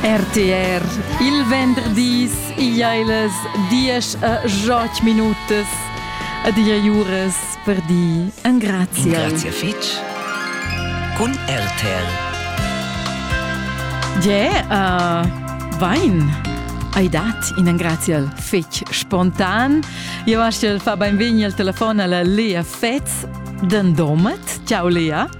RTR il venderdis igleilas 10 a 8 minutas a dia juras per di an grazia. Grazia fitch. Cun RTR. Yeah, uh, wein. Hai dat in grazial fetg spontan. Io aschel fa benvegni al telefon alla Lea Fetz, den Domet. Ciao Lea.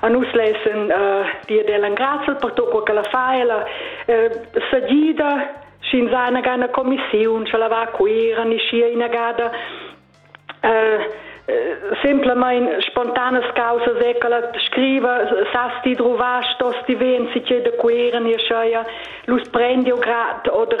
a nus lessen uh, dir del engrazzel per tot quel che la fa ella uh, sagida sch'ins ha una gana commissione ce la va a cuira niscia inagada uh, semplamain spontanas causas è che la scriva sas ti trovar stos ti ven si che de cuira ni schaia lus prendi o grad oder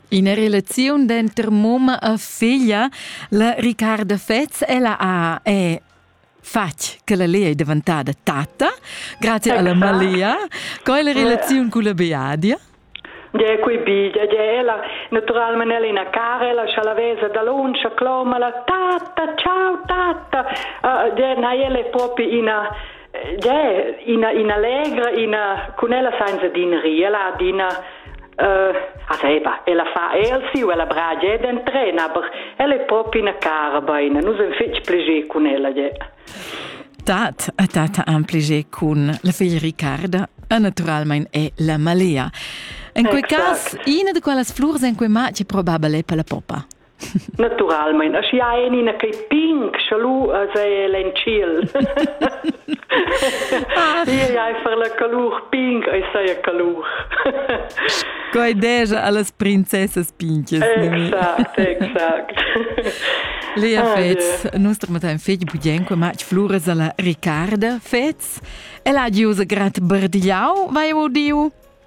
Ina relaziun denter mumma e figlia, la Riccarda Fetz, ella ha è fatg che la Lea è daventada tatta, grazie alla Malia. Co è la relazione con la Beadia? De quei bida de ella, naturalmente Elena Carela, scialavesa da Loncia, cloma la tatta, ciao tatta, uh, de na ele proprio ina ina ina legra ina cun ella senza din ri ella adina uh, a seba ella fa el siu ella bragia ed entrena aber ella è proprio ina cara beina nus en fetg plegé cun ella je Dat a tata amplege cun la figlia Ricarda e naturalmente è la malea. In quei caso, una di quelle flurs in quei match è probabile per la poppa. Naturalmein, aschia ein ina quei pink scha lu as ei en tschiel. Iei ai far la calur pink, ei sei a calur. Coi deja allas princessas pinches. Exact, exact. Lea ah, Fez, yeah. nus tramatam fetg budien qua match Fluras alla Ricarda Fez. El ha giusa grat bardiau, vai o diu?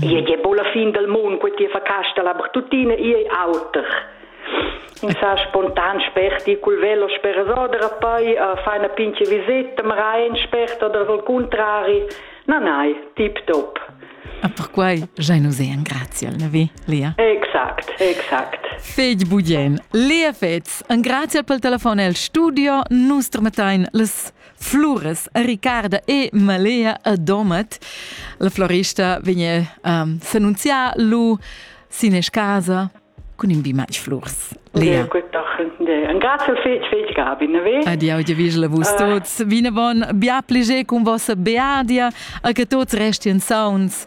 Io è po la fin del mondo, quei ti fa casta la bertutina, io è auter. In sa spontan sperti col velo sperso de rappai uh, fa una pinche visita, ma raen sperta del vol contrari, na nai, tip top. Ah, per quai giai nous è grazie al navi, Lia. Exact, exact. Fegl budien, Lea Fetz, un grazie pel telefon el studio, nus tramettain les Flores, Ricarda e Malea a Domat. La florista vegn um, s'annunziar lu sin casa cun in bimatg flurs. Lea. Grazie fetg, fetg Gabin. Adio, dir vis la vus ah. tots. Vine bon, bia pliger con vossa beadia, a che tots resti in sauns.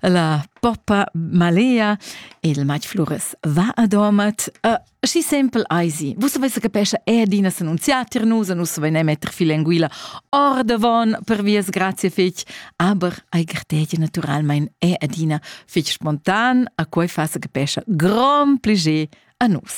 la poppa malea il mat Flores va a domat uh, schi sempel eisi vus savesse capescha er dina s'annunziar tir nus nus savein metter fil enguila ordavon per vias grazie fich aber ei gartegia naturalmein è adina fich spontan a quei fasa capescha grand pliger a nus